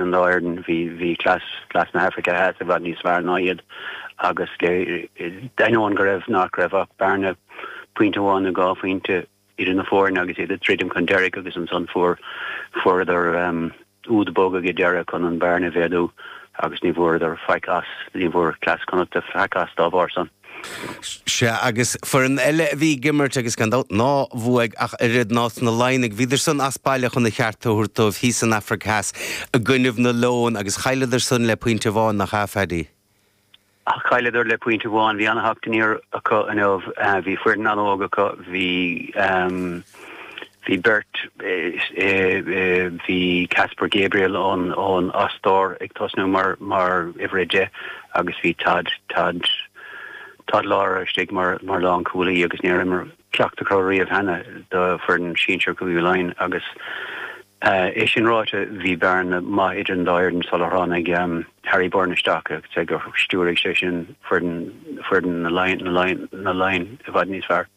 in Éirinn, bhí cleas na hAfraice Theas i bhfad níos fearr ná iad agus d'ainneoin go raibh nach raibh ach bearna pointe amháin nó dhá phointe idir na foirne agus iad ag druidim chun deiridh agus ansan fuair fuaireadar úd bog ag deireadh chun an bearna a mhéadú agus ní bhfuaireadar faic as, ní bhfuair cleas Chonnachta faic as dá bharr san. Sea, agus foireann eile a bhí ag imirt agus, gan dabht, ná bhuaigh ach oiread ná na Laighnigh. Bhíodar san as baile chun a cheart a thabhairt dóibh thíos san Afraic Theas i gcoinnibh na Leon agus chailleadar san le pointe amháin, nach ea, Phaddy? Chailleadar le pointe amháin. Bhí ana-theacht aniar acu inniu. Bhí foireann an-óg acu. Bhí. Bhí beirt, bhí Caspar Gabriel ón, ón, ón Ostair ag tosnú mar, mar uimhir a deich agus bhí Tadhg, Tadhg, Tadhg Lára istigh mar, mar lánchúlaí agus níor imir ceacht acu riamh cheana do fhoireann sinsear Chúige Laighean agus é sin ráite bhí bearna maith idir an dá fhoireann sular tháinig Harry Byrne isteach agus ag, stiúraigh sé sin foireann, foireann na Laighin, na Laighin, na Laighin i bhfad níos fearr.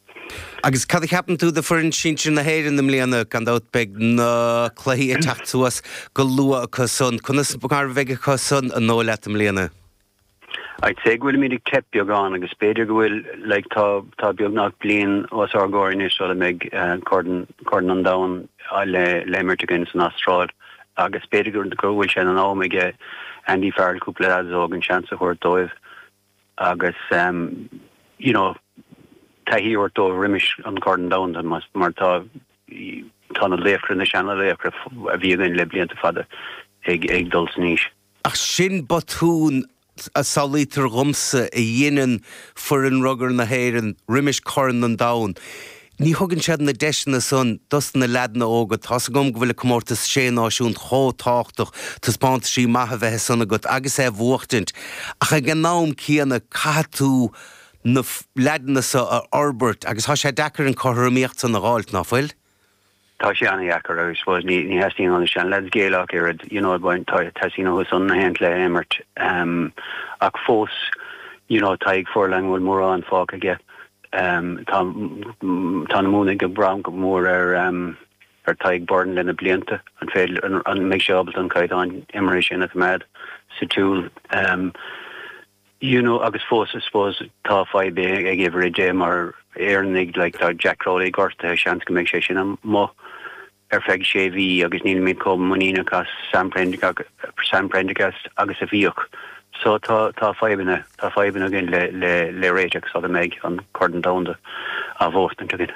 Agus cad a cheapann tú de foireann sinsir na hÉireann i mbliana? Gan dabht beidh na cluichí ag teacht suas go luath acu san. Conas mar a bheidh acu san an dóigh leat i mbliana? I'd say go bhfuilimid ag teip beagán agus b'fhéidir go bhfuil like tá tá beagnach bliain os ár gcomhair anois sula mbeidh corn corn an domhan le le imirt againn san Astráil agus b'fhéidir go bhfuil sé in am aige Andy Farrell cúpla leaids óg an seans a thabhairt dóibh. Agus you know taithí a thabhairt dóibh roimis an Corn Domhanda mar mar tá tá na laochra, na seanlaochra a bhí againn le blianta fada ag ag dul san aois. Ach sin botún a samhlaítear dhomsa a dheineann foireann rugar na hÉireann roimis Corn an Domhain. Ní thugann siad na deiseanna san dos na leaideanna óga. Tá's agam go bhfuil an Comórtas Sé Náisiún chomh tábhachtach, taispeántaisí maithe bheith ansan agat agus é bhuachtaint, ach ag an am céanna caithfidh tú na leaideanna so a fhorbairt agus thá sé deacair an cothromaíocht san a dh'fháilt, ná fuil? tá sé an-dheacair agus I suppose ní theastaíonn ó na seanleaids géilleadh ach oiread, you know teastaíonn uathu san gach aon chluiche a imirt ach fós you know Tadhg Furlong bhfuil mórán fágtha aige, tá tá na Mumhnaigh ag brath go mór ar ar Tadhg Beirne leis na blianta, an féidir, an mbeidh sé ábalta an caighdeán imeartha sin a choimeád sa tsiúl? you know agus fós I suppose tá fadhb ag uimhir a deich mar Éireannaigh like tá Jack Crowley gortaithe seans go mbeidh sé sin amuigh ar feadh sé mhí agus níl mé chomh muiníneach as Sam Prendergast Sam Prendergast agus a bhíodh so tá tá fadhbanna tá fadhbanna againn le le le réiteach sula mbeidh an Corn Domhanda á bhuachtaint againn.